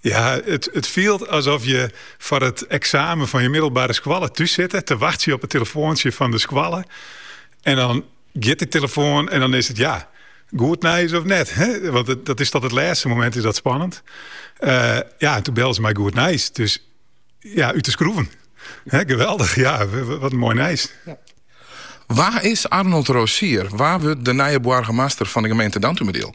Ja, it, it fielt alsof je foar it eksamen fan je middelbare skoalle thús sitte, te wachtsje op it telefoantsje fan de skoalle. En dan giet de telefoan en dan is it ja, goed nijs of net. Hè? Want it, dat is tot it lêste momint is dat spannend. Uh, ja, en toen bellen se mei goed nijs. Dus ja, út de skroeven. Hè, geweldig, ja, wat in moai nijs. Ja. Wa is Arnold Rosier? Wa wurdt de nije boargemaster fan de gemeente Dantumadiel?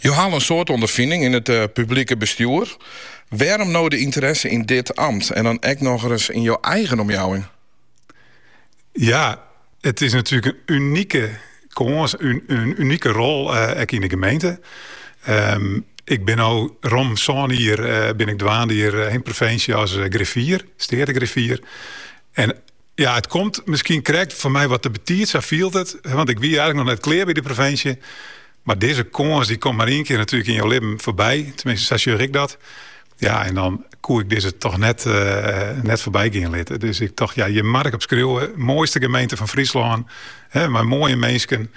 Jo ha al in soad ûnderfining yn it publike bestjoer. Wêrom no de ynteresse yn dit amt en dan ek nochris yn jo eigen omjouwing? Ja, it is natuerlik in unike kâns, in unike rol ek yn de gemeente. Ik bin no rom sân jier bin ik dwaande hjir yn provinsje as griffier, steategriffier. Ja, it komt miskien krekt foar my wat te betiid, sa fielt it, want ik wie eigentlik noch net klear by de provinsje. Mar dizze kâns dy komt mar ien kear natuerlik yn jo libben foarby, tenminste sa sjoch ik dat. Ja, en dan koe ik dizze toch net, eh, net foarby gean litte. Dus ik tocht, ja, hjir moat ik op skriuwe. Moaiste gemeente fan Fryslân, hè, mei moaie minsken.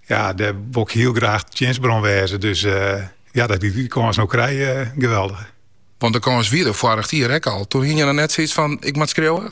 Ja, dêr wol ik hiel graach tsjinstber oan wêze. Dus eh, ja, dat ik dy kâns no krij, eh, geweldig. Want de kâns wie der foarich jier ek al. Toen hie je dan net zoiets fan, ik moat skriuwe?